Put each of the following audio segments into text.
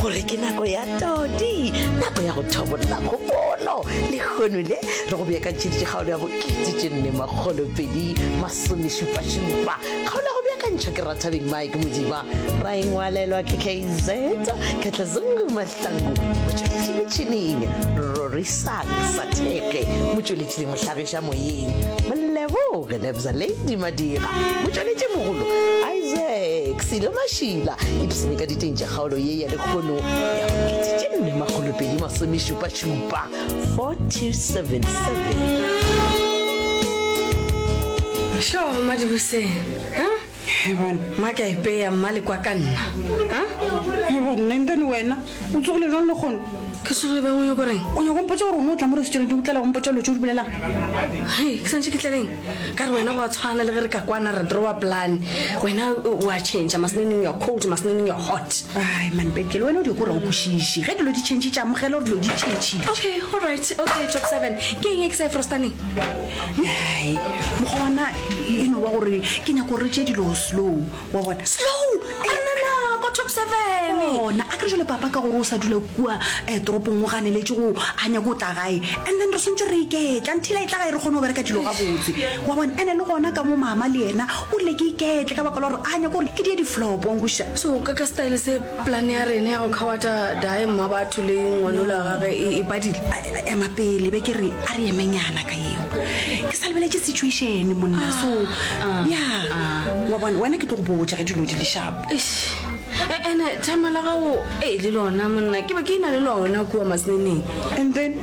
gore ke nako ya todi nako ya go thobolla kgopolo lehono le re go beakantšheditše kgaolo ya bokete tše nne makgolopedi masomešupašupa kgaolo ya go beakantšha ke rathabeng mike modiba ra engwalelwa ke kz katlazungu mahlangu motšweletši metšhineng rorisak satheke motšweletši le mohlagiša moyeng moleboge lebza lady madira motšweletši mogolo isaac selo mašila ipsene ka diteng tša Kgaolo ye ya lekgono ya maketšetše mme makgolopedi masomešupašupa 4277. Šo madiboseng mma ka epeya mma le kwa ka nna nentane wena o tsogile jang le kgono ke sogile bangwe yo koreng o nyako mpotsa gore o ne o tla mo restaurant o tlala go mpotsa lo tse o di bolelang ke santse ke tlaleng ka re wena go a tshwana le ge re ka kwana re drawa plan wena o a change maseneneng your cold maseneneng your hot ai manpekele wena o di kore o kwešiše ge dilo di change tša amogela gore dilo di change okay all right okay top seven ke eng e ke sa e frostaneng ai mokgwa wana e no ba gore ke nyako re tše dilo slow wa bona slow anana ko top seven ona a kere jale papa ka gore o sa dula kua um toropong o ganeletše go a nyako o tla gae and then re swantse re iketla nthila e tla gae re kgone go bereka dilo ga botse wa bona ene le gona ka mo mama le yena o rile ke iketle ka baka la gore a nyako gore ke die diflopong boša so ka ka style se Plane ya rena ya go khawata Dae Mmabatho le ngwanolo wa gage e, e badile. Ema pele, be ke re a re emenyana ka yeo. Ke sa lebeletše situation monna, ah, so ah, ya ah. wa bona wena ke tlo go botša ge dilo di le sharp. E, ene thama la gago e le lona monna ke be ke ina le lona kua maseneneng. And then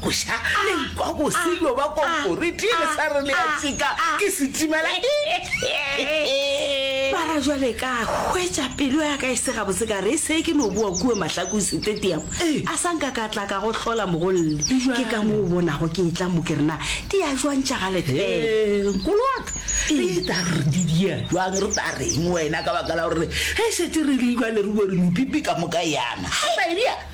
Go ša le nkwa go se no ba konkoriti le sa re le ya tsika ke setimela. Bara jwale ka hwetša pelo ya ka e se gabotse ka re e se ke no boa kua Mahlakong Stadium a sa nka ka tla ka go hlola mogolle. Ke ka mo o bonago ke etla mo ke re na di ya jwantša ga lethele. Nkolo wa ka, re ta re di di ya jwang re ta reng wena ka baka la gore re šetše re le jwale re were mepipi ka moka yana. Haleluya!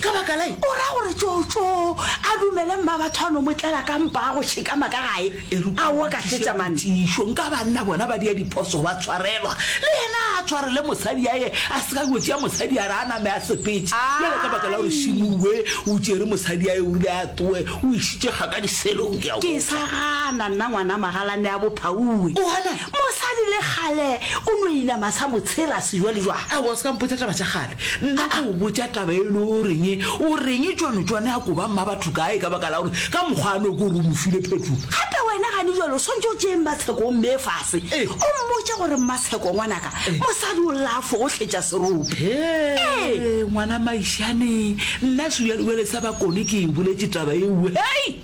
Ka baka la eng? O ra gore tšotšo a dumele mmabatho a no mo tlela ka mpa a go šikama ka gae. A wo ka šetša mane. Tiišo, nka banna bona ba dia diphoso ba tshwarelwa, le yena a tshwarele mosadi ya ye, a se ka yo tšea mosadi ya re a name a sepetše. Bjale ka baka la gore Shimue o tšere mosadi ya ye, o rile a tloe, o išitše kga ka diselong, ke a go. Ke sa gana nna ngwana magalane ya bophaue. O bona? Mosadi le kgale o no inama sa mo tshela sejwalejwale. Aowa, o se ka mpotša taba tša kgale. Nna a o botša taba e le o reng, o reng tšwano tšwane a koba mmabatho kae ka baka la gore ka mokgwa a no ko re o mo file phetolo. Gape wena gane jwale o swantše o tšee Mmatsheko o mmee fase, o mmotše gore, Mmatsheko ngwanaka, mosadi o lla a fo go hletša serope. Hee, ngwana Maišane, nna sebjalebjale sa Bakone ke e boletše taba eo, hei!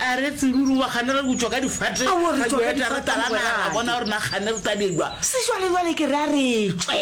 A re, Tseruri wa gane re butšwa ka difate, Aowa, re tšwa ka difate, mogweraka. Ra bona gore na gane re tabelwa. Sešwalejwale ke re a re tšwe.